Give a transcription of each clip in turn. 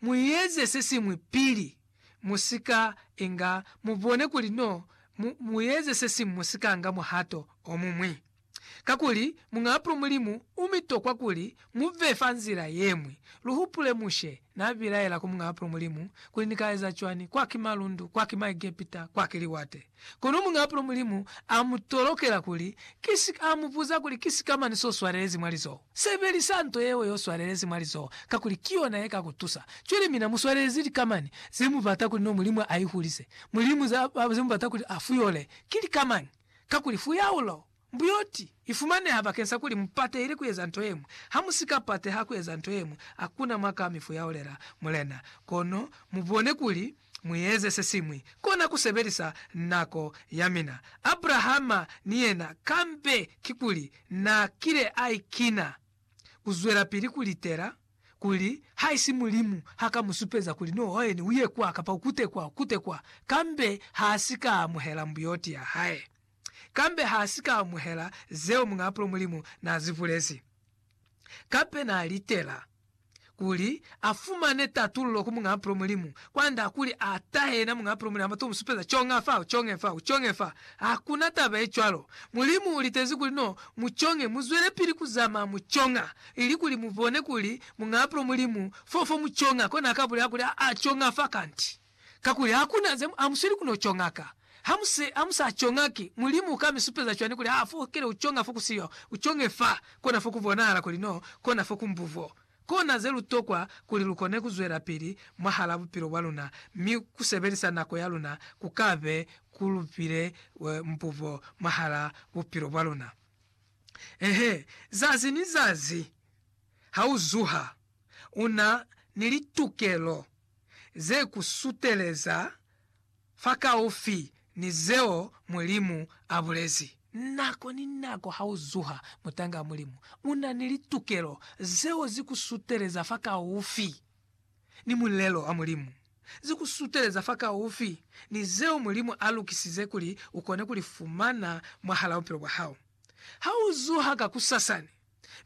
mueze sesiñwi pili musika inga mubone kuli no mu, mueze sesiñwi musika nga muhato omuñwi. Kakuli Muñaapulo Mulimu umitokwa kuli muve fa nzila yeñwi. Luhupule Mushe nabilaela ku Muñaapulo Mulimu kuli, Nikaeza cwani? Kwaki malundu, kwaki Maegepita, kwaki liwate. Kono muñ'a pulo Mulimu a mu tolokela kuli ki si ka mu puza kuli ki sikamani s'o swalelezi mwa lizoho. Sebelisa nto yeo y'o swalelezi mwa lizoho kakuli ki yona ye ka ku tusa. Cwale mina mu swalelezi likamani ze mu bata kuli no Mulimu a i hulise. Mulimu ze mu bata kuli a fuyole ki likamani, kakuli fuyaulo Mbuyoti ifumaneha bakeng sa kuli mupatehile kueza nto yeñwi. Hamusika pateha kueza nto yeñwi, hakuna mwa ka mifuyaolela Mulena. Kono mubone kuli mueze sesiñwi, kona kusebelisa nako yamina. Abrahama ni yena, kambe kikuli naakile aikina kuzwelapili kulitela kuli haisi Mulimu haka musupeza kuli no hoeni uye kwa kapa ukute kwa, ukute kwa, kambe haasika amuhela mbuyoti yahae. kambe ha si ka amuhela zeo Muñaapulo Mulimu n'a zi bulezi. Kape n'a litela kuli a fumane tatululo ku Muñaapulo Mulimu, kwa nda kuli a tahe yena Muñaapulo Mulimu, a bato mu supeza conga fa, u conge fa, u conge fa. Ha ku na taba ye cwalo. Mulimu u litezi kuli no mu conge, mu zwelepili ku zamaa mu conga, ili kuli mu bone kuli Muñaapulo Mulimu fo fo mu conga. Kona a ka bulela kuli, A a conga fa kanti. Kakuli hakuna ze amusweli kuno conga ka. Hamuse, hamusa conga ki, Mulimu uka mi supeza cwani kuli ha fokele uconga fo kusiyo, uconge fa, kona fo kubonahala kuli no kona fo kumbuvo? Kona ze lutokwa kuli lukone kuzwelapili mwahala bupilo bwa luna, mi kusebelisa nako ya luna kukabe kulupile mbuvo mwahala bupilo bwa luna. Eehe, zazi ni zazi hauzuha, una ni litukelo ze ku suteleza fakaufi ni zeo Mulimu a bulezi. Nako ni nako ha u zuha mutanga wa Mulimu, u na ni litukelo zeo zi ku suteleza fakaufi ni mulelo wa Mulimu, zi ku suteleza fakaufi ni zeo Mulimu a lukisize kuli u kone ku li fumana mwahal'a bupilo bwa hao ha u zuha kakusasani.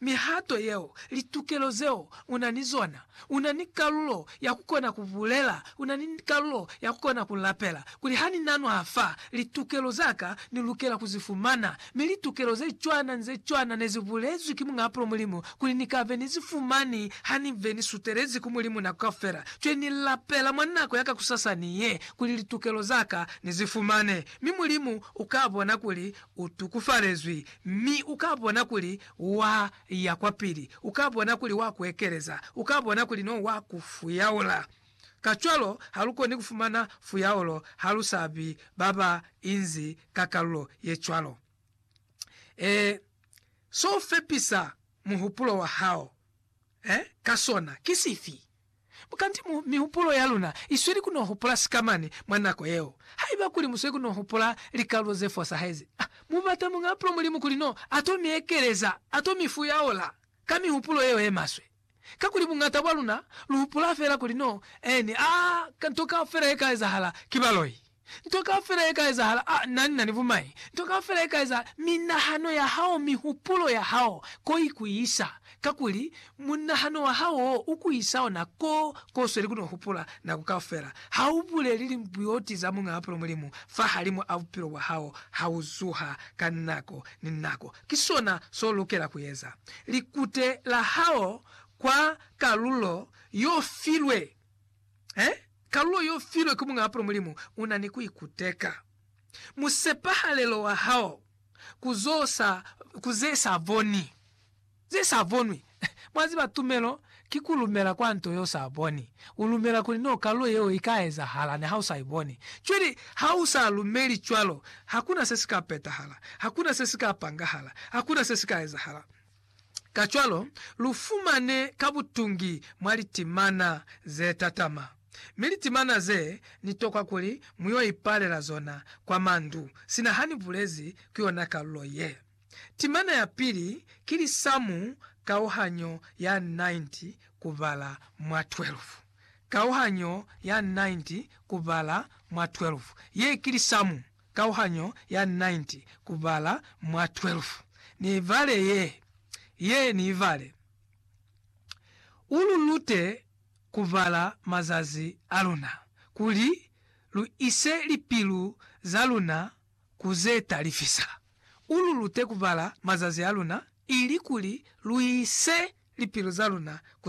mihato yeo, litukelo zeo u na ni zona. U na ni kalulo ya ku kona ku bulela, u na ni kalulo ya ku kona ku lapela kuli, Ha ni na nwa fa, litukelo za ka ni lukela ku zi fumana. Mi litukelo ze cwana ni ze cwana ne zi bulezwi ki Muñ'a Pulo Mulimu kuli ni ka be ni zi fumani ha ni be ni sutelezi ku Mulimu nako kaufela. Cwe ni lapela mwa nako ya kakusasani ye kuli litukelo za ka ni zi fumane, mi Mulimu u ka bona kuli U tukufalezwi, mi u ka bona kuli wa ya kwapili. U ka bona kuli wa ku ekeleza. U ka bona kuli no wa ku fuyaula. Kacwalo, ha lu koni ku fumana fuyaulo ha lu sa bi ba ba inzi ka kalulo ye cwalo. Ee, so u fepisa muhupulo wa hao ka sona ki sifi? Kanti mu mihupulo ya luna isweli ku no hupula sikamani mwa nako yeo. Haiba kuli musweli ku no hupula likalulo ze fosahezi, mu bata Muñ'a Pulo Mulimu kuli no a to mi ekeleza, a to mi fuyaula ka mihupulo yeo ye maswe. Kakuli buñata bwa luna lu hupula fela kuli no ni a nto kaufela ye ka ezahala ki baloi. Nto kaufela ye ka ezahala, a na nina ni bumai. Nto kaufela ye ka ezahala, minahano ya hao, mihupulo ya hao, ko i ku isa. Kakuli, munahano wa hao wo u ku isa ona ko, ko sweli kuno hupula, nako kaufela. Ha u buleli limbuyoti za Muñ'a Mapilo Mulimu fahalimu a bupilo bwa hao ha u zuha ka nako ni nako. Ki sona so lukela ku eza. Likute la hao kwa kalulo yo filwe. He, kalulo y'o filwe ki Muñaa Pula Mulimu u na ni ku ikuteka. Musepahalelo wa hao ku zo sa, ku ze sa boni, ze sa bonwi. Mwa ziba, tumelo ki ku lumela kwa nto y'o sa boni. U lumela kuli n'o kalulo yeo i ka ezahala niha u sa i boni. Cwale ha u sa lumeli cwalo, hakuna se si ka petahala, hakuna se si ka pangahala, hakuna se si ka ezahala. Kacwalo, lu fumane ka butungi mwa litimana ze tatama, mi litimana ze ni tokwa kuli mu yo ipalela zona kwa mandu, sina ha ni bulezi ku yona kalulo ye. Timana ya pili ki lisamu kauhanyo ya 90 kubala mwa 12. Kauhanyo ya 90 kubala mwa 12 ye ki lisamu. kauhanyo ya 90 kubala mwa 12. Ni ibale ye. Ye ni ibale. U lu lute kubala mazazi a luna, kuli lu ise lipilu za luna ku ze ta lifisa. U lu lute kubala mazazi a luna, ili kuli lu ise lipilu za luna ku.